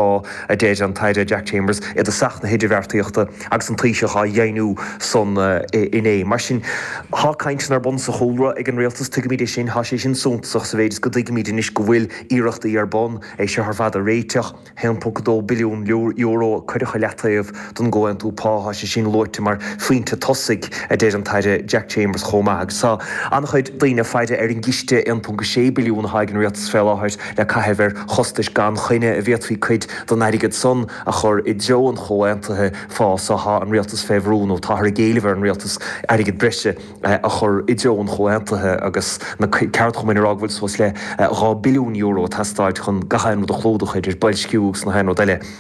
á, a deir an tAire Jack Chambers, iad i dtosach na hidirbheartaíochta agus an Taoiseach á dheimhniú san inné. Mar sin, tá cainteanna ar bun sa chúlra ag an Rialtas, tuigimid é sin, tá sé sin suntasach sa mhéid is go dtuigimid anois go bhfuil iarrachtaí ar bun é seo ar fad a réiteach. €1.2 billiún a cuireadh ar leataobh. don gcomhaontú pá. Tá sé sin luaite mar phointe tosaigh, a deir an tAire Jack Chambers chomh maith, agus tá an-chuid daoine ag faire ar an gciste €1.6 billiún atá ag an Rialtas fé láthair le caitheamh ar chostais gan choinne go bhféadfaí cuid den airgead san a chur i dtreo an chomhaontaithe phá so. Tá an Rialtas fé bhrú, nó táthar ag éileamh ar an Rialtas, airgead breise a chur i dtreo an chomhaontaithe agus na ceardchumainn ag rá go bhfuil suas le €2 billiún ag teastáil chun gach aon rud a chlúdach, idir boilsciú agus gach aon rud eile.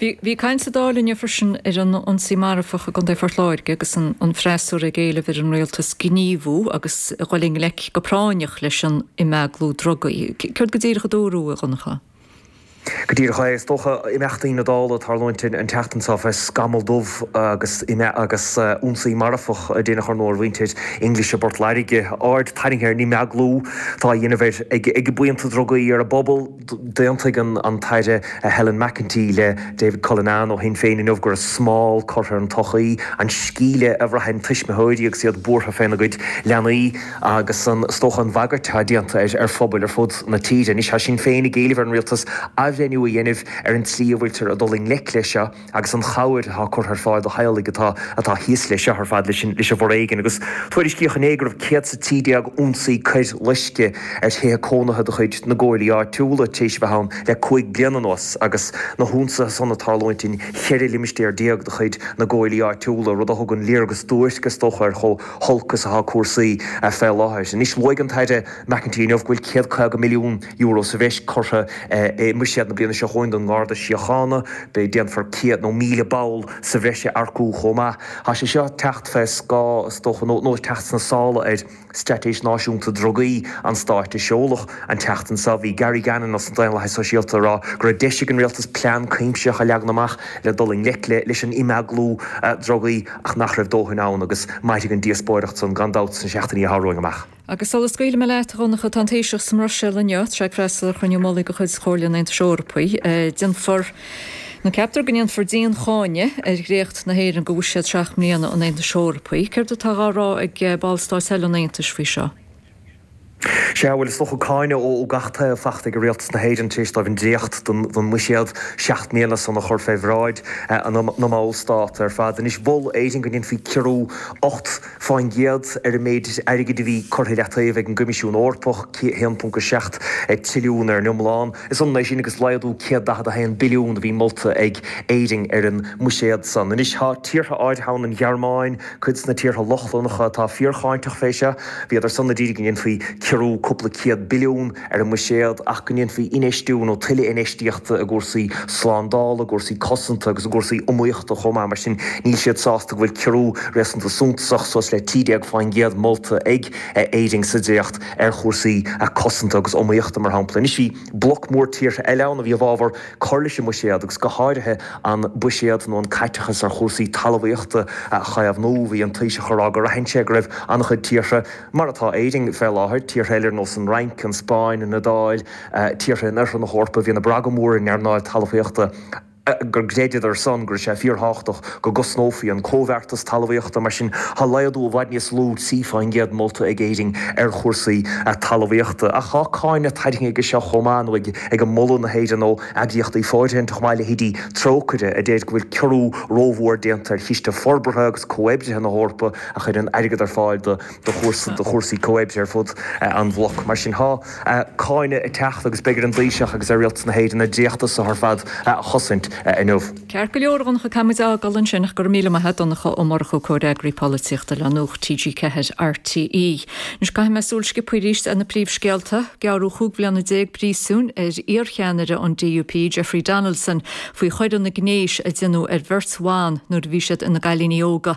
Bhí bhí caint sa Dáil inniu freisin ar an ionsaí marfach i gContae Phort Láirge agus an an freasúra ag éileamh ar an Rialtas gníomhú agus a dhul i ngleic go práinneach leis an imeaglú drugaí. Céard go díreach a dúradh, a Dhonncha? Go díreach é. Is dócha imeachtaí na Dála ag tarlúint an tseachtain seo fé scamall dubh agus ina agus ionsaí marfach déanta ar thriúr de mhuintir English i bPort Lairge. Aird tarraingthe ar an imeaglú atá á dhéanamh ar ag ag buíonta drugaí ar an bpobal. D'aontaigh an tAire Helen McEntee le David Cullinane ó Shinn Féin inniu go raibh smál curtha ar an tsochaí, an sceimhle a bhraitheann tuismitheoirí agus iad buartha faoina gcuid leanaí agus is dócha an bhagairt atá déanta ar phobail ar fud na tíre. Anois tá Sinn Féin ag éileamh ar an Rialtas athbhreithniú a dhéanamh ar an tslí a bhfuiltear ag dul i ngleic leis seo. agus an chabhair atá curtha ar fáil do theaghlaigh atá atá thíos leis seo ar fad, leis an leis an bhforéigean, agus tuairiscíodh inné go raibh 113 ionsaí coir loiscthe ar thithe cónaithe de chuid na gcomhairlí áitiúla tar éis a bheith ann le cúig bliana anuas agus na hionsaithe san ag tarlúint in 14 limistéar de chuid na gcomhairlí áitiúla, rud a thugann léargas duairc, is dócha, ar chomh holc is atá cúrsaí fé láthair. Anois, luaigh an tAire McEntee inniu go bhfuil 150 milliún. euro sa bhreis curtha i mbuiséad na bliana seo chugainn don nGarda Síochána. Déanfar céad nó míle ball sa bhreis a earcú chomh maith. Tá sé seo ag teacht fé scáth, is dócha, nó ag teacht sna sála ar, Straitéis Náisiúnta Drugaí an stáit a seoladh an tseachtain seo. Bhí Gary Gannon as an Daonlathas Sóisialta ag rá go raibh deis ag an rialtas plean cuimsitheach a leagan amach le dul i ngleic leis an imeaglú drugaí ach nach raibh dóthain ann agus mairfidh an díospóireacht san gan dabht sna seachtainí atá romhainn amach. Agus sula scaoilfidh mé leat, a Dhonncha, tá an Taoiseach sa mBruiséil inniu, tá sé ag freastal ar chruinniú mullaigh de chuid Chomhairle an Aontais Eorpaigh. Déanfar, nó ceaptar go ndéanfar dian-cháineadh ar dhréacht na hÉireann do bhuiséad seacht mbliana an Aontais Eorpaigh. Céard atá dhá rá ag ballstáit eile an Aontais faoi seo? Sea, bhuel, is dócha cáineadh ó gach taobh faighte ag Rialtas na hÉireann tar éis dóibh an dréacht den mbuiséad seacht mbliana san a chur fé bhráid na mballstát ar fad. Anois, mhol Éire go ndéanfaí ciorrú ocht Fán gcéad ar an méid airgid a bhí curtha i leataobh ag an gCoimisiún Eorpach, 1.7 trilliún ar an iomlán. Is ionann é sin agus laghdú 141 billiún a bhí molta ag Éirinn ar an mbuiséad san. Anois tá tíortha áirithe ann, an Ghearmáin, cuid de na tíortha Lochlannacha, atá fíorcháinteach fé seo. Bhíodar san a d'iarraidh go ndéanfaí ciorrú cúpla céad billiún. ar an mbuiséad ach go ndéanfaí infheistiú nó tuilleadh infheistíochta i gcúrsaí slándála, i gcúrsaí cosanta agus i gcúrsaí iomaíochta chomh maith. Mar sin, níl siad sásta go bhfuil ciorrú réasúnta suntasach, suas le 13%, molta ag Éirinn sa dréacht ar chúrsaí cosanta agus iomaíochta, mar shampla. Anois, bhí bloc mór tíortha eile ann a bhí i bhfabhar cur leis an mbuiséad agus go háirithe an buiséad nó an caiteachas ar chúrsaí talmhaíochta a chaomhnú. Bhí an Taoiseach ag rá gur aithin sé go raibh an-chuid tíortha, Mar atá Éirinn fé láthair, tíortha eile ar nós an Fhrainc, an Spáinn, an Iodáil, tíortha in oirthear na hEorpa, bhíonn ag brath go mór ar an earnáil talmhaíochta go gcreideadar san go raibh sé fíorthábhachtach go gcosnófaí an comhbheartas talmhaíochta. Mar sin, tá laghdú i bhfad níos lú, 3 fán gcéad, molta ag Éirinn ar chúrsaí talmhaíochta. Ach tá cáineadh tarraingthe aige seo chomh maith, nó ag moladh na hÉireann ó eagraíochtaí fóirithinte chomh maith, leithéidí Trócaire, a deir go bhfuil ciorrú rómhór déanta ar chiste forbartha agus comhoibrithe na hEorpa, a chuireann airgead ar fáil do chúrsaí comhoibre ar fud an bhloc. Mar sin tá cáineadh ag teacht agus beidh ar an dTaoiseach agus ar Rialtas na hÉireann an dréacht so ar fad a chosaint inniu. Ceart go leor, a Dhonncha, caithfidh muid a fhágáil ansin ach go raibh míle maith agat, Donncha Ó Murchú, Comhfhreagraí Polaitíochta le Nuacht TG4, RTÉ. Anois caithimis súil sciobtha arís ar na príomhscéalta. Gearradh cúig bhliana déag príosúin ar iarcheannaire an DUP, Jeffrey Donaldson, faoi choireanna gnéis a deineadh ar bheirt bhan nuair a bhí siad ina gcailíní óga.